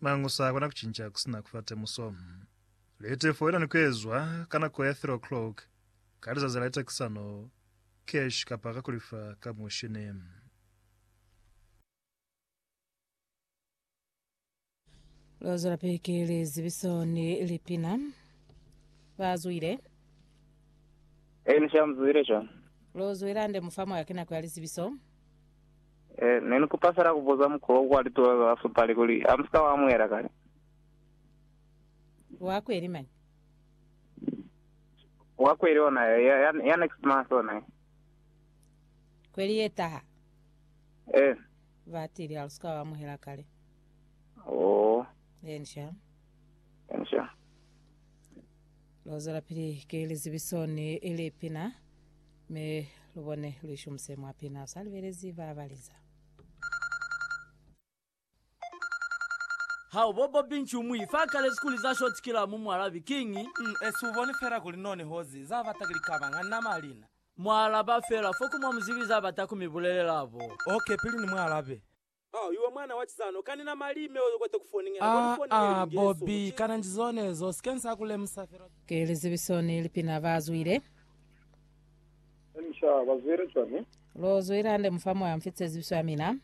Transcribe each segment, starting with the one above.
Mañi u sa kona ku cinca ku si na ku fa temuso? Litefo i na ni ku ezwa ka nako ya 3 o'clock ka lizazi la litakisano, cash kapa ka ku lifa ka mushini. Lu zwelapili ki lizibiso ni lipina. Ba zwile. Elisha, Mu zwile shwang? Lu zwile hande, mufamu, ha ki nako ya lizibiso. Eh, ne ni kupa fela ku buza mukwa wo kwa lituba ba ba fapali kuli, Ha mu si ka wa amuhela kale? Wa kweli mañi? Wa kweli ona ya, ya, ya, ya next month ona ya. Kweli ye taha. Eh, Ba tili ha lu si ka wa amuhela kale. oh, Ensha. ensha. Lu zwelapili ki lizibiso ni lipina, mi lu bone lu ishumuse mwa pina. U sa libelezi ba ba liza. Hao bobo binci umu ife akalezi kuli za short killer mu mualabi kiñi? Umm esi ubone fela kuli none hozi za bata kuli kaba nga nama lina. Mualaba fela fo ku mwa muzibi za bata ku mi bulelela bo. Ok pili ni mualabe. Ah ah Bobby kana nji zonezo usike nsa ku lemusa fela twa. Ki lizebiso ni lipina ba zwile. Elisha, Ba zwile cwani? Lo zwile hande mufa moya mfi cezibiso ya mina.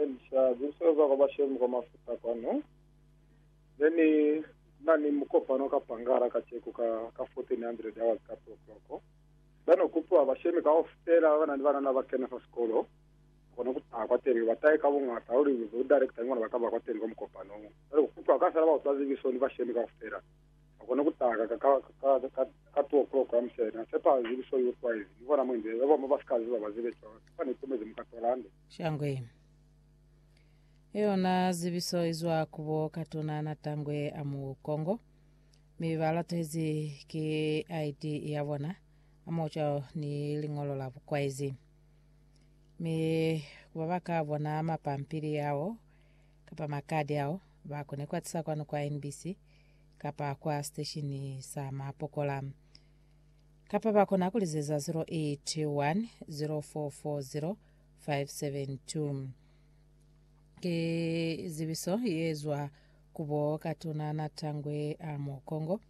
Elisha, Zebiso za kwa bashemi kwa mafuta kwanu. Ne ni na ni mukopano ka Pangala kaceku ka, ka 1400 hours ka two o'clock. Ba no kupiwa bashemi kaufela ba ba na ni banana ba kena fa sikolo. Kona ku taha kwateli, ba tahe ka bungata luli inge bo director ni bona ba kaba kwateli kwa mukopano. Cwale ku kutwa ka sala ba utwa zibiso ni bashemi kaufela. Ba kona ku taha ka, ka, ka, ka, ka two o'clock ya musena. Sepa zibiso i utwa izi, ni bona mo inze, ba bamwi ba si ka ziba, ba zibe cwalo. Sepa ni itumezi muka tola hande. Shangwe. I yona zibiso izwa ku bo Katuna na Tangwe a mu Kongo. Mi ba latuhezi ki ID ya bona, amoho cwalo ni liñolo la bukwaizi. Mi ku ba ba ka bona mapampili ao kapa makadi ao, ba kone ku a tisa kwanu kwa NBC kapa kwa siteshini sa Mapokola. Kapa ba kona ku lizeza 081 0440 572. Ki zibiso ye zwa ku bo Katuna Natangwe a Mokongo,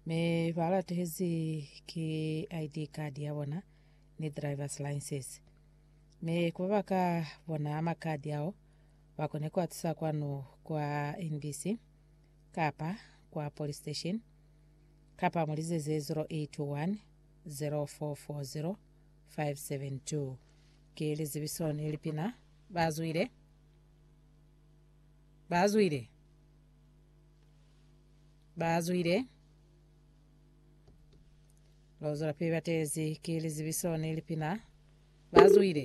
mi ba latehezi ki ID card ya bona ni driver's license. Mi ku ba ba ka bona makadi ao, ba kone ku a tusa kwanu kwa NBC kapa kwa police station kapa mu lizeze 0821 0440 572. Ki lizibiso ni lipina ba zwile ba zwile ba zwile. Lozwelapili batezi ki lizibiso ni lipina. Bazwile.